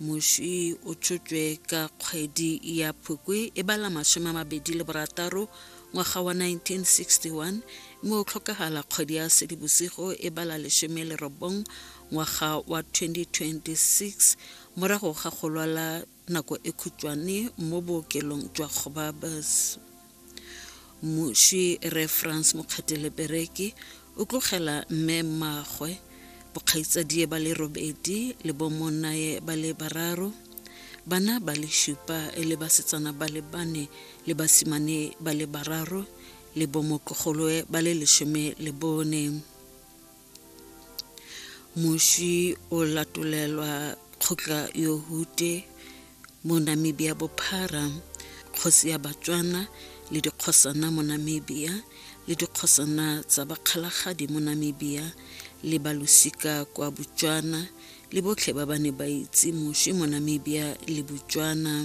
moši o tšotšwe ka kgwedi ya phukwi e bala masome a mabedi le borataro ngwaga wa 1961 mme o tlhokagala kgwedi ya sedibosigo e bala lesome le robong ngwaga wa 2026 morago ga go lwala nako e khutšwane mo bookelong jwa Gobabis. Mmuši Re Franz Mokgethelepereki o tlogela mme mmagwe, bokgaitsadie ba le robedi le bomonnaye ba le bararo, bana ba le šupa e le basetsana ba le bane le basimane ba le bararo le bomotlogoloe ba le lesome le bone. moswi o latolelwa kgotla yo hute mo namibia bophara kgosi ya batswana le dikgosana mo namibia le dikgosana tsa bakgalagadi mo namibia le balosika kwa botswana le botlhe ba ba ne ba itse moswi mo namibia le botswana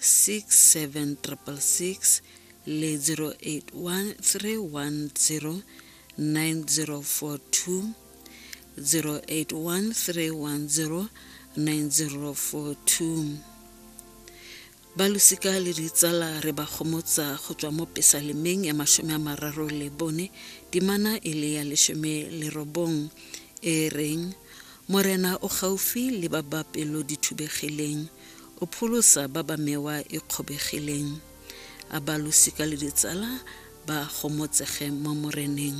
6766 le 081310 9042 081310 9042 balosika le ditsala re ba gomotsa go tswa mo pesalemeng ya masome a mararo le bone dimana e le ya lesome le robong e reng morena o gaufi le ba ba pelo di thubegileng O pholosa ba ba mewa e kgobegileng, a ba losika le ditsala ba gomotsege mo Moreneng.